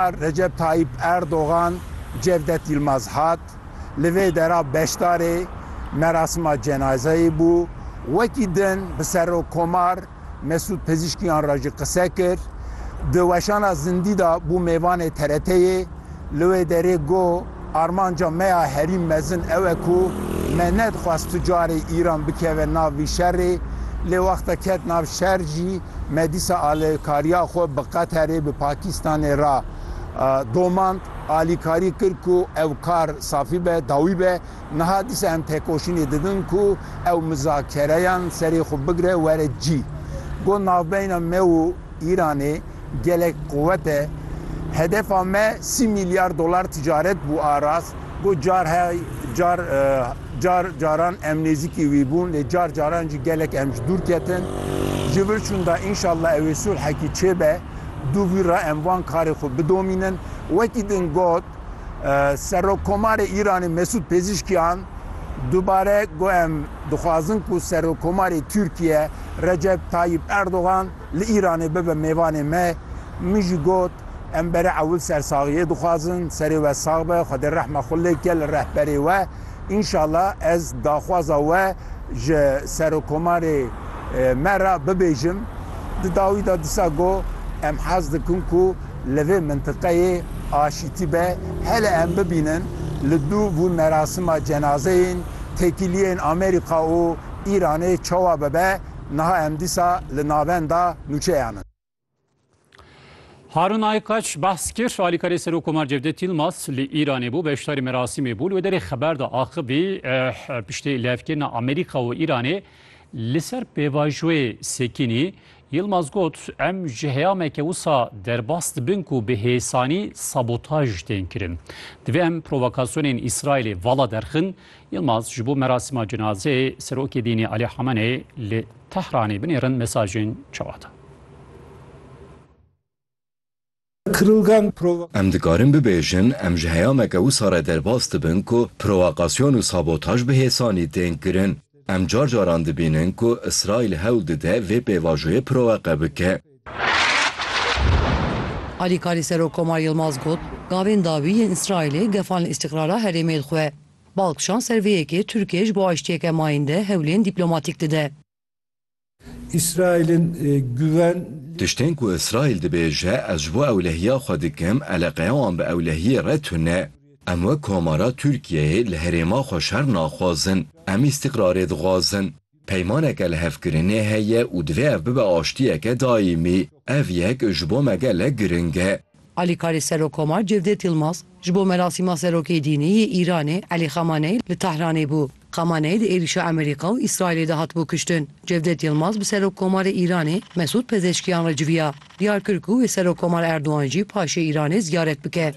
Recep Tayyîp Erdogan, Cevdet Yilmaz hat, li vê dera beşdarê merasima cenazeyê bû. Wekî din bi Serokkomar Mesûd Pezîşkiyan re jî qise kir. Di weşana zindî de bû mêvanê TRT'yê, li wê derê got, Armanca me ya herî mezin ew e ku me nedixwest tu carê Îran bikeve nav vî şerê, lê wexta ket nav şer jî me dîsa alîkariya xwe bi Qeterê, bi Pakîstanê re domand, alîkarî kir ku ew kar safî be, dawî be. Niha dîsa em têkoşînê didin ku ew mizakereyan serê xwe bigire were cî. Got navbeyna me û Îranê. Gelek quwet e. Hedefa me sî mîlyar dolar ticaret bû a rast. Got car hay car car caran em nêzîkî wî bûn lê car caran jî gelek em ji dûr ketin. Ji vir çûn da înşallah ew ê sulhekî çêbe. Dû vîr re em van karê xwe bidomînin. Wekî din got Serokkomarê Îranê Mesûd Pêzîşkîyan dubare got em dixwazin ku Serokkomarê Tirkîye Recep Tayîp Erdogan Li Îranê bibe mêvanê me. Min jî got, Em bere ewil sersaxiyê dixwazin, serê we sax be, Xwedê rehma xwe lê bike li rehberê we. Înşala ez daxwaza we ji Serokomarê me re bibêjim. Di dawî de disa got, Em hez dikin ku li vê mintiqeyê aşîtî be. Hele em bibînin li dû vûn merasima cenazeyên têkiliyên Amerîka û Îranê çawa bibe. niha em dîsa li navenda nûçeyan in. Harûn Aykaç behs kir, Alîkarê Serokkomar Cevdet Yilmaz li Îranê bû, beşdarî merasîmê bû. Li wê derê xeber da axivî piştî lihevkirina Amerîka û Îranê li ser pêvajoyê sekînî, Yilmaz got, Em ji heyameke wisa derbas dibin ku bi hêsanî sabotaj tên kirin. Divê em provokasyonên Îsraîlê vala derxin Yilmaz ji bo merasîma cinazeyê Serokê Dînî Alî Hameneyê li Tehranê binêrin mesajên çawa da? Em dikarin bibêjin em ji heyameke wisa re derbas dibin ku provokasyon û sabotaj bi hêsanî tên kirin. Em car caran dibînin ku Îsraîl hewl dide vê pêvajoyê provoke bike. Alîkarî Serokkomar Yilmaz got, Gavên dawî yên Îsraîlê gefan li îstîqrara herêmê li xwe. Bal kişand ser vê yekê Tirkiye ji bo aştiyeke mayînde hewlên dîplomatîk dide. Îsraîlin guven. Tiştên ku Îsraîl dibêje ez ji bo ewlehiya xwe dikim, eleqeya wan bi ewlehiyê re tune. Em wek komara Tirkiyeyê li herêma xwe şer naxwazin. Em îstîqrarê dixwazin. Peymaneke lihevkirinê heye û divê ev bibe aştiyeke daîmî. Ev yek ji bo me gelek giring e. Alîkarê Serokomar Cevdet Yilmaz ji bo merasîma Serokê Dînî yê Îranê Elî Xamaneyî li Tehranê bû. Xamaneyî di êrîşa Emerîka û Îsraîlê de hatibû kiştin. Cevdet Yilmaz bi Serokkomarê Îranê Mesûd Pezeşkiyan re civiya. Diyar kir ku wê Serokkomar Erdogan jî paşê Îranê ziyaret bike.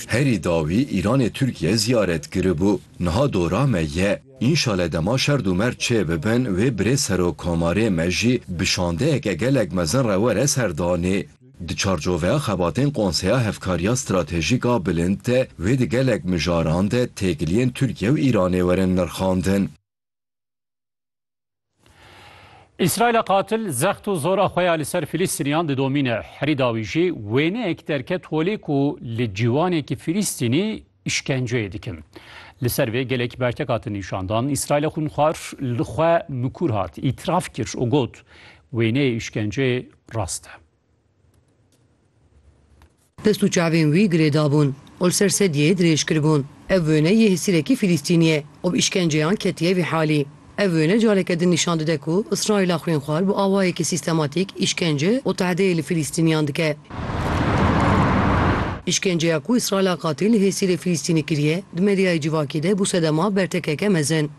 Herî dawî Îranê Tirkiye ziyaret kiribû. Niha dora me ye. Înşale dema şerd û merd çê bibin wê birêz Serok Komarê me jî bi şandeyeke gelek mezin re were ser danê. Di çarçoveya xebatên Konseya Hevkariya Stratejîk a Bilind de wê di gelek mijaran de têkiliyên Tirkiye û Îranê werin nirxandin. Îsraîla qatil zext û zora xwe ya li ser Filîstîniyan didomîne. Herî dawî jî wêneyek derket holê ku li ciwanekî Filîstînî îşkenceyê dikin. Li ser vê gelek bertek hatin nîşandan. Îsraîla xwînxwar li xwe mikûr hat, îtiraf kir û got, Wêneyê îşkenceyê rast e. Dest û çavên wî girê dabûn û li ser sedyeyê dirêj kiribûn. Ev wêne yê hesîrekî Filîstînî ye û bi îşkenceyan ketiye vî halî. Ev wêne careke din nîşan dide ku Îsraîla xwînxwar bi awayekî sîstematîk îşkence û tehdeyê li Filîstînîyan dike. Îşkenceya ku Îsraîla Katî li hêsîrê Filîstînî kiriye, di medyayê civakî de bû sedema bertekeke mezin.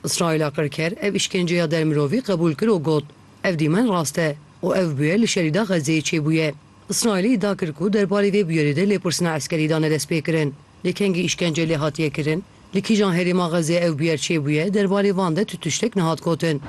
Îsraîla qirker ev îşkenceya der mirovî qebûl kir û got, Ev dîmen rast e û ev bûyer li şerî da Xezzeyê çêbûye. Îsraîlê îdia kir ku der barê vê bûyerê de lêpirsina eskerî da ne destpêkirin. Lê kengî îşkence lê hatiye kirin? Li kîjan herêma Xezzeyê ev bûyer çêbûye? Der barê van de tu tiştek nehat gotin.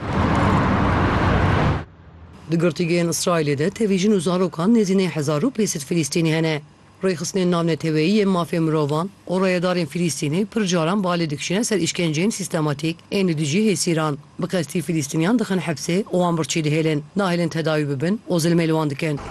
Di girtîgehên Îsraîlê de tevî jin û zarokan nêzî nê hezar û pêncset Filîstînî hene. Rêxistinên navneteweyî yên mafê mirovan û rayedarên Filîstînî pir caran balê dikişîne ser îşkenceyên sîstematîk ên li dijî hêsîran. Bi qestî Filîstîniyan dixin hepsê û wan birçî dihêlin, nahêlin tedawî bibin û zilmê li wan dikin.